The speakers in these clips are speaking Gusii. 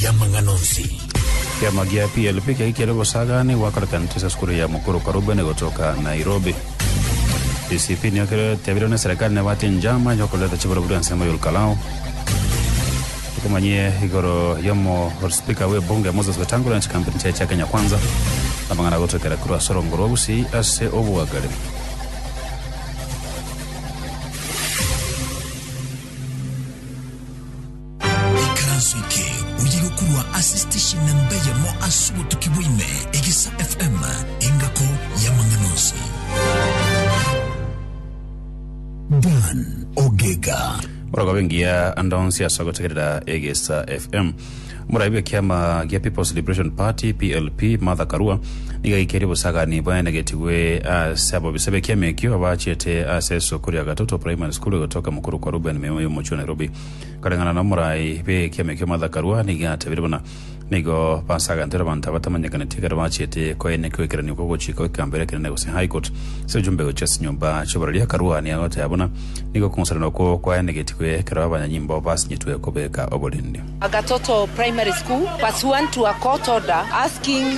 y'amang'ana onsi. Ekiama gia PLP kiaye kiare gosagaana goakorokanete ase esukuru ya Mukuru Karubeni gotoka Nairobi. DCP nigo kere tiabirwe ne serikali nebwate enjama yokoreta chiburoburi ase engo y'Olukalao. Okomanyie igoro yomo speaker we bunge Moses Wetangula na chikampuni chiaye chia Kenya Kwanza. Amang'ana agotwekera korwa ase orongo rwa Gusii ase obwagare. Ekeranso eke oyiga korwa ase station namba eyemo ase obotuki bwa ime, Egesa FM, engako y'amang'ana onsi. Dan Ogega. Orogobe ngiya ande onsi ase ogotegerera Egesa FM. Omoraibi bw'ekiama gia People's Liberation Party, PLP, Martha Karua nigo aikeire obosagani bwaenegetigwe ase abobisa b'ekiama ekio abaachete ase esoko ria Gatoto Primary School egotoka mokoro kwa Reuben Meuyo omochie o Nairobi. Koreng'ana n'omorai bw'ekiama ki'omoathakarwa, nigo atebirie buna nigo basagantoire abanto abatamanyekaneti ekero bachiete koenia kwekeranio kw'ogochika gw'ekegamberero ekenene gose High Court ase ojumbe gochia ase nyomba chi'oborori akarwania goteba buna nigo okong'usanana okwo kwaenegetigwe ekero abanyanyimbo basinyetwe kobeka oborindi. Agatoto Primary School, Verse 1 to Akoto da asking.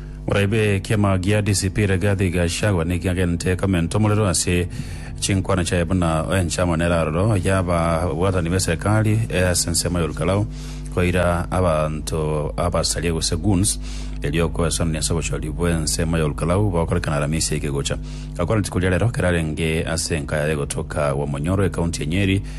Moraibe ekiama gia DCP Rigathi Gachagua nigo agente komenta omorero ase chinkwana chiaye buna enchama nere aroro y'ababwatani b'eserikari ase ensemo ya Olkalau koira abanto abasaria gose goons erio okoesanani ase obochori bw'ensemo ya Olkalau bokorekana Aramisi eke egocha. Gakwana rituko ria rero kerarenge ase enka yaye gotoka Gwamonyoro, ekaunti ya Nyeri,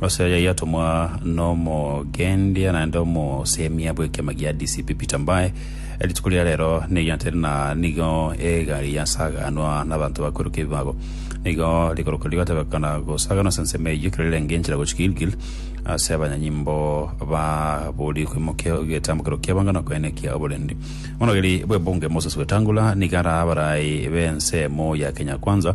Ase aya yatomwa nomogendia naende omosemia bw'ekiama gia DCP Peter Mbae, rituko ria rero neriantere na nigo egari yasaganwa nabanto bakweruka ebibago. Nigo rikoroka rigatebekana gosaganwa ase ensemo eyio ekero rirenge enchera gochia Gilgil ase abanyanyimbo baborie kwimokia egetambokero ki'ebango na okoenena ekia oborendi. Omonogeri bw'ebunge Moses Wetangula nigo arabe abarai b'ensemo ya Kenya Kwanza,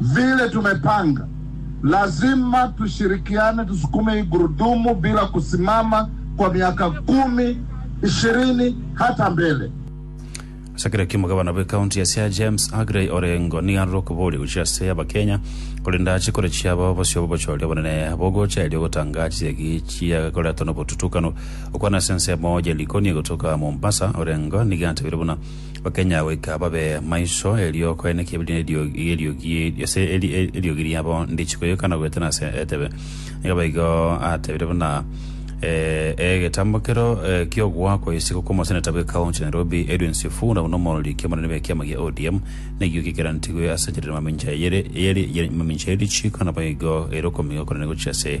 Vile tumepanga, lazima tushirikiane tusukume hii gurudumu bila kusimama kwa miaka kumi, ishirini hata mbele. Asakire kimo gavana bwe county ya Siaya James Aggrey Orengo nigo arure okoboria gochia ase Abakenya korende ache korechia abao bosio bobochori obonene bogocha erio gotanga chisegi chiagokoretwa nobotutukano okwana ase ensemo ya Likoni egotoka Mombasa Orengo nigo atebire buna Bakenya goika babe maiso, erio okoeneka ebirie eriogi eriogi ase eri- e- eriogi riabo ndichi koyoka na goetana ase etebe. Nigo baigo atebire buna eh, egetambo kero eh, ki'ogwa kwa isiko kw'omoseneta bwe county ya Nairobi Edwin Sifuna buna omorori ki'omonene bwe kiama gia ODM nekio gikerantigwe ase enchera ya mamincha eyere eyeri ya mamincha ya richiiko na baigo erokomi okonene gochia ase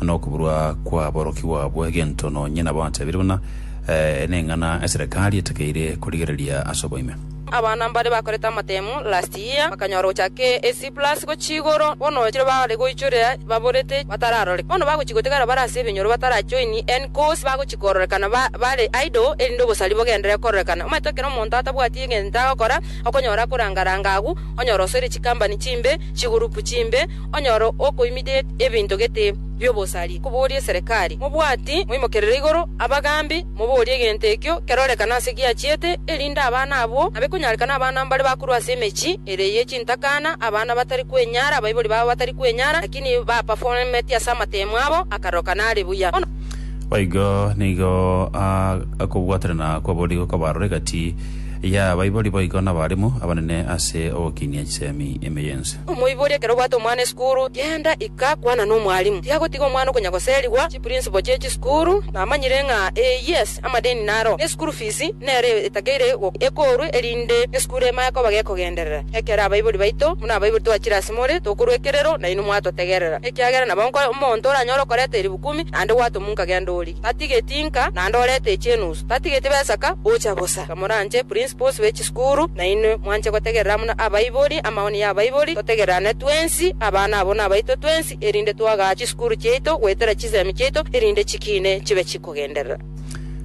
nokoburwa kw'aborokigwa abo egento nonye nabo achabire buna neng'ana eserekari etakeire korigereria ase oboime. Abana mbare bakorete amatemu last year bakanyora gochake A C plus gochia igoro bono chire bare goichorera baborete batararoreka bono bagochia gotigara bare ase ebinyoro batara join any course bagochia kororekana bare idle erinde obosari bogendere kororekana omanyete ekero omonto atabwati egento agokora okonyora akoranga ranga agwo onyora osoire chikambani chimbe chigurupu chimbe Onyore okoimidet ebinto gete bi'obosari, koborie eserekari, Mobwati moimokerere igoro abagambi, moborie egento ekio kerorekane ase giachiete, erinde abana abwo nabe konyarekana abana mbare bakorwa ase emechie ere ye chintakana, abana batari kwenyara, abaibori babo batari kwenyara, lakini bapaformeti ase amateemo abo akaroka nare buya. Bono. Boigo nigo aa okobwaterana kwaborigwe kwabarure egati y'abaibori boigo nabaremu abanene ase ogokinia chisemi ime y'ense. Omoibori ekero obwate omwana esukuru, genda ika kwana nomwalimu. Tiagotiga omwana okonya goserigwa chiprinciple chie chisukuru, namanyire ng'a ee yes, amadeni naro, ne school fees nero etakeire ekorwe erinde esukuru emanye koba gekogenderera. Ekero abaibori baito, buna abaibori twachire ase more, tokorwa ekerero, nainwe mwatotegerera, ekiagera nabo omonto oranyore okoreta eribu kumi, naende gwatomunka genda orie. Tatigeti inka naende orete echi enusu. Tatigeti besaka gocha bosa. Kamoranche principles be chisukuru nainwe mwanche gotegerera buna abaibori, amaoni ya abaibori, totegererane twensi, abana abo nabaito twensi, erinde twagaa chisukuru chiaito goetera chisemi chiaito erinde chikiine chibe chikogenderera.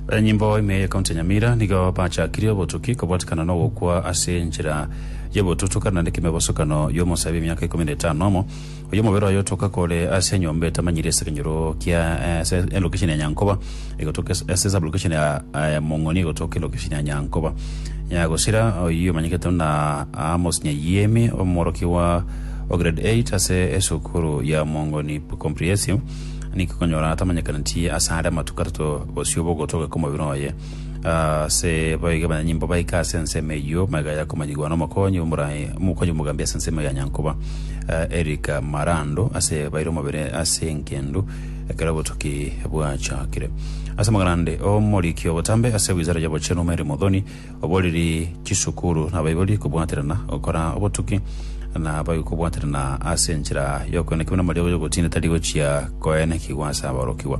Abanyanyimbo ime ye County ya Nyamira nigo bachakirie obotuki kobwatikana na ogokwa ase enchera y'obotutuka naende kemebosokano y'omosae b'emiaka ikomi na etano na omo. Oyomobere oye otoka kore ase enyomba etamanyiri ase ekenyoro kia eh, ase elokesheni ya Nyankoba egotoka es- ase sablokesheni ya eh, Mong'oni egotoka elokesheni ya Nyankoba Nyagosira oyio omanyekete buna Amos Nyayiemi omworokigwa o grade 8 ase esukuru ya Mong'oni Comprehensive nikikonyora atamanyekaneti ase are amatuko atato bosio bogotoka kw'omobere oye ase baige banyanyimbo baike ase ensemo eyio maiga yakomanyigwa n'omokonyi omora- omokonyi omogambi ase ensemo ya Nyankoba eh, Eric Marando ase baire omobere ase engendu ekero obotuki bwachakire ase amagana ande omoriki obotambe ase wizara y'obochenu Mary Muthoni oboriri chisukuru nabaibori kobwaterana gokora obotuki na baige kobwaterana ase enchera y'okoenekigwa na amariogo y'ogotindetari gochia koenekigwa ase aborokigwa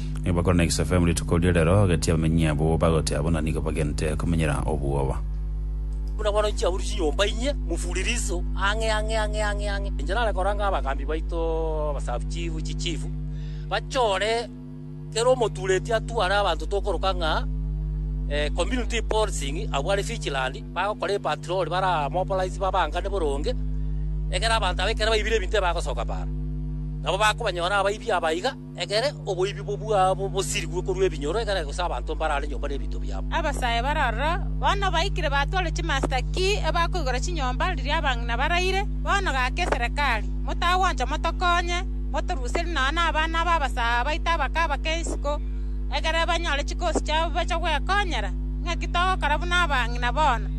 nigo bakorana egesafaemu rituko riria rero, agati abamenyi abwo bagotea buna nigo bagente komenyera obwoba. Buna bono chiaburi chinyomba inye mufuririso ang'e ang'e ang'e ang'e ang'e. Inche nare koranga abagambi baito abasabuchifu chichifu bachore kera omotureti atware abanto tokoroka ng'a community policing abwo are vigilant bagokora epatroli bare aa mobilize babangane boronge ekero abanto aba ekero baibire ebinto ebagosoka baaro nabo bakobanyora abaibi aba iga Ekere oboibi bwabo bosirigwe korwa ebinyoro, ekere gose abanto mbarare nyomba nebinto biabo. Abasae bare aroro bono baikire batware chimasita ki ebakoigora chinyomba riria abang'ina baraire. Bono gaki eserekari, motagwancha motokonye, motoruserie nonya nabana b'abasae abaito abake-abake isiko, ekere banyore chikosi chiabo bache gwekonyera. Ing'aki togokora buna abang'ina bono?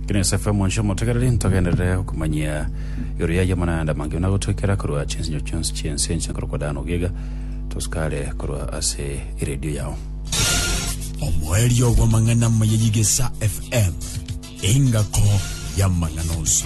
Ng'a Yosefu omonchie omotegereri, ntogenderere okomanyia. Igoro y'ayio amang'ana amange buna gotoekera korwa chinsinyo chionsi chi'ense enche nkorokwa Dan Ogiega, Toscare korwa ase eredio yao. Omoerio bw'amang'ana amaya y'Igesa FM, engako y'amang'ana onsi.